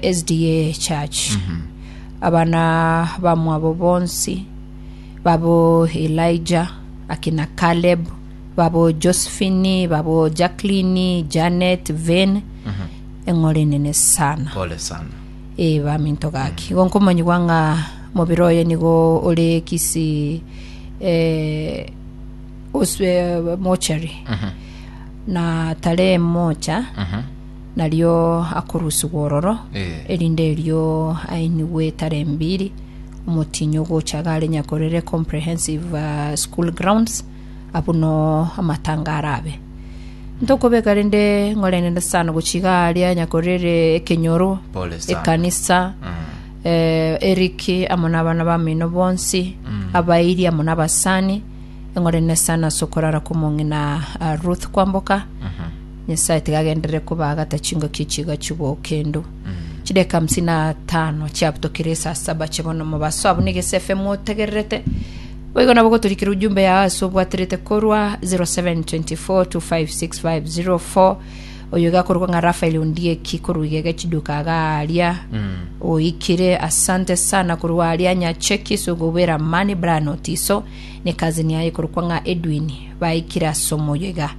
SDA Church. Abana bamwabo bonsi babo Elijah, akina Caleb, babo Josephine, babo Jacqueline, Janet, Vane, eng'ore enene sana. Pole sana. Eh, baminto gaki igo nkomonyigwa ng'a mobere oye nigo ore kisi eh, oswe mochari na tare mocha nario akorusigwa ororo, Eh. erinde erio ainigwe etara embiri omotienyi ogocha gare Nyakorere Comprehensive uh, School Grounds abuno amatanga arabe ntokobeka rende ng'orenere sana gochiga aria Nyakorere ekenyoro Pole sana. ekanisa Mm. eh, Eric amo n'abana bamino bonsi abairi amo n'abasani eng'orene sana sokorara komong'ina uh, Ruth Kwamboka Nyasae tiga agenderere kobaagata chingaki echi igachugwa oo kendo. Chideka hamsini na tano chiabutokire esaa saba chia bono mobaso abwo niga ase FM otegererete. Boigo nabo goturikira ujumbe yao ase obwaterete korwa 0724256504 oyo iga akorokwa ng'a Rafael Ondieki korwa igega chiduka agaria oikire asante sana korwa aria nyacheki sogobera amani Brian Otiso ne cousin yaye korokwa ng'a Edwin baikire ase omoyo iga